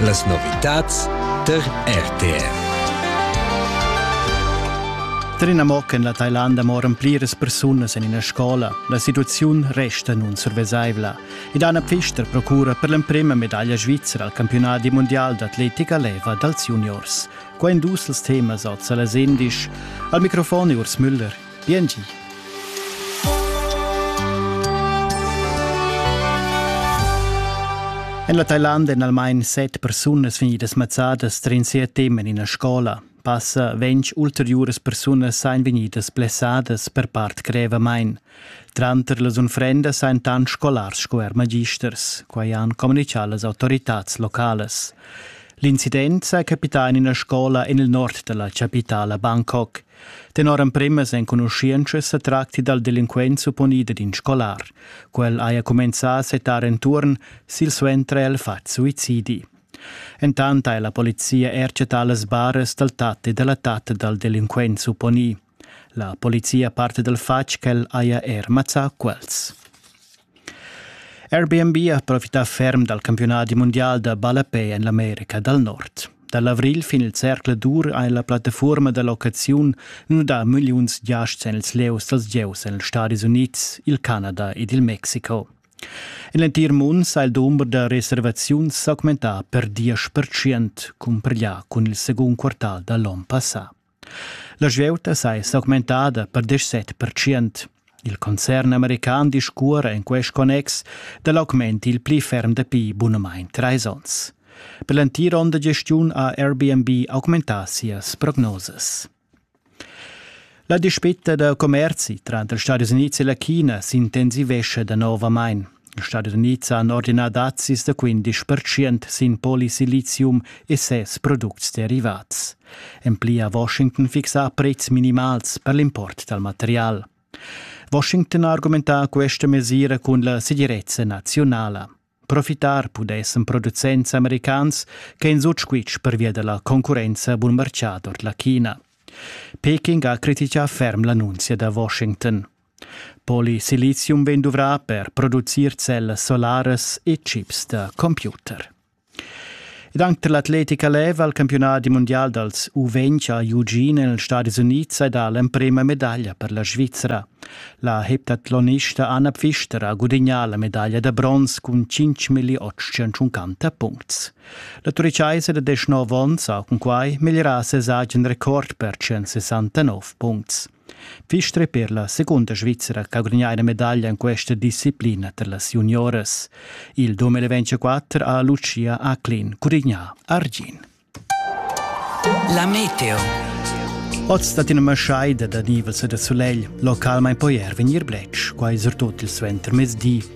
Las novitads tar RTR. Trina mo che en la Thailanda moran pliras persunas en ina scola. La situaziun resta nunsurvesaivla. Ed Anna Pfister procura per l'emprima medaglia svizra al campionat mondial d'atletica leva dals juniors. Qua en dus temas oz a las 11. Al microfon Urs Müller. Biengi. En la Thailand èn almain set persunas vegnidas mazzadas trin sia tema en ina scola. Passa ventg ulteriuras persunas sain vegnidas blessadas per part grevamain. Tranter las unfrendas sain tant scolars sco er magisters, quai han communichà las autoritads localas. L'incident sa capità en ina scola en il nord da la chapitala Bangkok. Tenor empremas enconuschientschas sa tracti dal delinquent supponida d'in scolar. Quel haja cumenzà a settar enturn, silsuenter ha el fatg suicidi. Entant ha la polizia er chattà las baras dal tat e da la tatta dal delinquent supponì. La polizia parte dal fatg ch'el haja er mazzà quels. Airbnb ha profità ferm dal campiunadi mundial da ballapè en l'America dal Nord. Da l'avrigl fin il Cercle d'Ur ha la plattafuorma da locaziun nudà milliuns giasts en ils lieus dals gieus en ils Stadis Unids, il Canada ed il Mexico. En l'entir mund ha il dumber da reservaziuns s'augmentà per diesch percent cumpareglià cun il segund quartal da l'onn passà. La svieuta s'ei s'augmentada per deschset pertschient. Il concern american discuora en quest connex dall'augment il pli ferm dapi bunamain treis onns. Per l'entira onda gestiun ha Airbnb augmentà sias prognosas. La dispita da commerzi tranter Stati Units e la China s'intensivescha danovamain. Ils Stadis Unids han ordinà dazis da quindisch pertschient sin polisilizium e ses products derivats. En pli ha Washington fixà prezs minimals per l'import dal material. Washington ha argumentà questa mesira cun la segirezza nazionala. Profitar pudessan producents americans che in sutschquitsch pervia della concurrenza bun marcià ord la China. Peking ha critichà ferm l'annunzia da Washington. Polisilizium vegn duvrà per producir cellas solaras e chips da computer. Ed anche per l'atletica leva il campionat mundial dals U20 a Eugene negli Stati Uniti ed ha l'emprema medaglia per la Svizzera. La heptathlonista Anna Pfister ha gudagnà la medaglia da bronz cun 5.850 puncts. La turichaisa da 19 onns ha cun quai migliorà ses agen record per 169 puncts. Pfister per la secunda Svizra ch'ha gudagnà ina medaglia en questa disciplina tar las junioras. Il 2024 ha Lucia Aclin curignà argin. La meteo. Oz dat ina maschaida da nivels e da sulegl, localmain poi er vegnir bletsch, quai surtut il suentermezdi.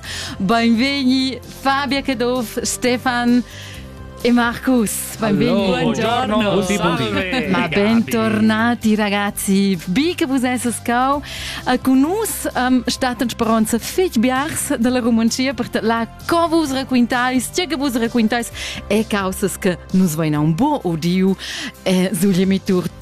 Beinvegni Fabia Caduff, Stefan e Marcus. Benvenuti. Ma bentornati ragazzi. Bi che vus esses cau a con nus um, stat in speronza fitg biars dalla Romancia per la co vus racquintais, tge che vus racquintais e causas che nus veina un buon odio e sulle mitur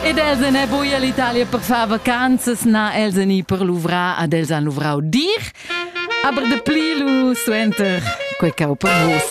Ed els ne buia l'Italia per far vacanzas, na els ni per luvrar ad els han luvrau dir, aber de pli lu suenter quei cau per vos.